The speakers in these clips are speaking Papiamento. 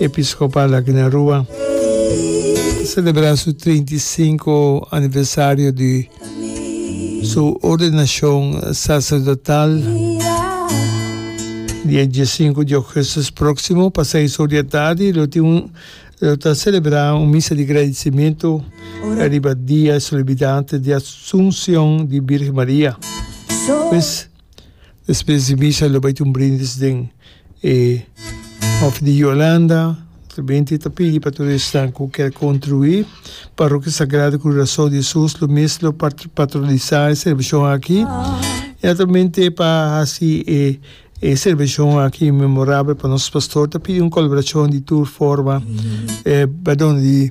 Episcopal aki na Rua ta celebra su treinta i sinku aniversario di su ordenacion sacerdotal dia diesinku di Augustus proximo pa seis or di e tardi lo tin un lo ta celebra un misa di gradicimentu riba dia solemnidad di Asuncion di Virgen Maria pues. Despues di misa lo bay tin un brindis den e hof di Yolanda. Noblemente ta pidi pa tur esnan cu kier contribuí. Parroquia Sagrado Curason di Hesus lo mes lo patronisá e celebracion aki. Y naturalmente pa haci e e celebracion aki memorabel pa nos pastor ta pidi un colaboracion di tur forma, eh, perdon, di.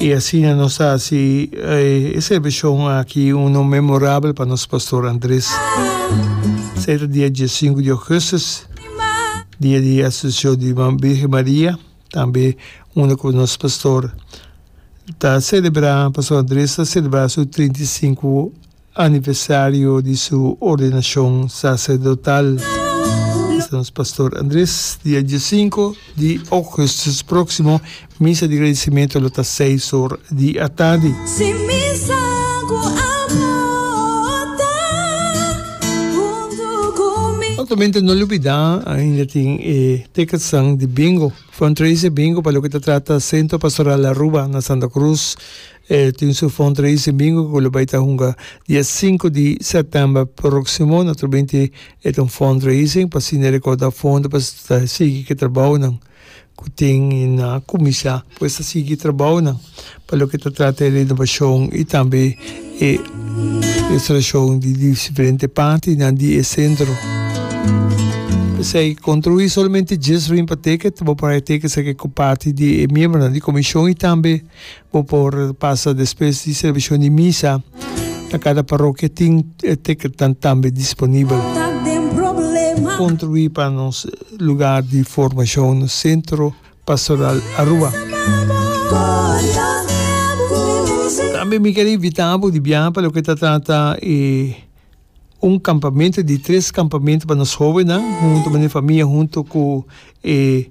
Y asina nos ta haci e celebracion aki uno memorabel pa nos Pastor Andres. Esei ta dia diesingu di augustus, dia di Asunción di Virgen Maria, tambe unda cu nos Pastor ta celebra, Pastor Andres ta celebra su trinta i sinku. aniversario di su ordenacion sacerdotal. Esta nos Pastor Andres, dia diesinco di Augustus proximo, misa di gradicimento lo ta seis or di atardi. Altamente no lubida ainda tin e ticketnan di Bingo, Fundraiser Bingo pa loke ta trata Centro Pastoral Aruba na Santa Cruz, E tin su fundraise e bingo ku lo bai ta hunga dia sinku di sètèmber próksimo. Naturalmente e ta un fundraising pa asina rekauda fondo pa ta sigui ku e trabounan ku tin na kuminsá. Pues ta sigui e trabounan pa loke ta trata e renobashon i tambe e restaurashon di diferente partinan di e sentro. P'esei kontruí solamente dies rimpateke ta bo por haya teke sa ke ku parti di e miembronan di komishon i tambe. Bo por pasa despues di servishonan di misa na kada parokia tin e tekernan tambe disponibel. Construí pa nos lugar di formacion Centro Pastoral Aruba. Tambe mi ker invita bo di biaha pa loke ta trata e un campamento di tres campamento pa nos hobennan hunto men e famia hunto cu e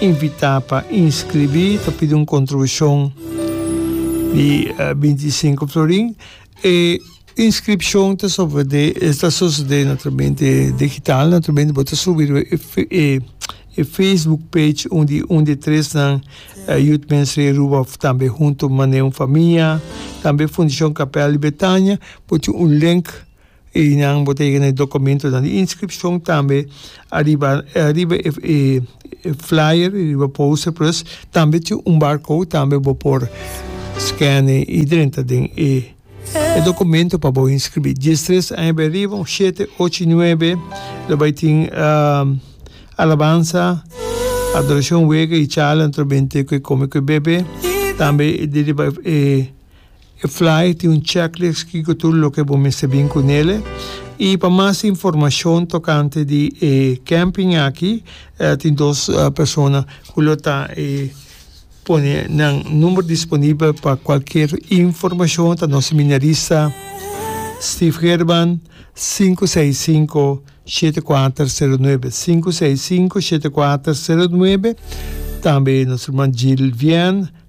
Invitá pa inskribí ta pidi un kontribushon di binti i sinku florin. E inskripshon ta sosodé ta sosodé na Trementi Digital, na Trementi bo ta subi riba e e facebook page un di un di tresnan Youth Ministry Aruba òf tambe Huntu Maneun Famia, tambe Fundashon Kapèl di Betania, bo tin un link. E nan bo ta yega na e dokumentonan di inskripshon tambe ariba ariba e e e flyer riba poster pues tambe tin un barcode tambe bo por scan'e i drenta den e e dokumento pa bo inskribí dies tres aña b'e riba òf shete ocho i nuebe lo bai tin alabansa adorashon wega i charla anto b'e ku e kome ku e bebe tambe diriba e. E flyer tin un checklist ki cu tur loke bo mester bin cu nele. Y pa mas informacion tocante di e camping aki tin dos persona cu lo ta e pone nan number disponibel pa cualkier informacion ta nos seminarista Steve Gerban sinku seis sinku shete kuater sero nuebe sinku seis sinku shete kuater sero nuebe tambe nos herman Jill Vian.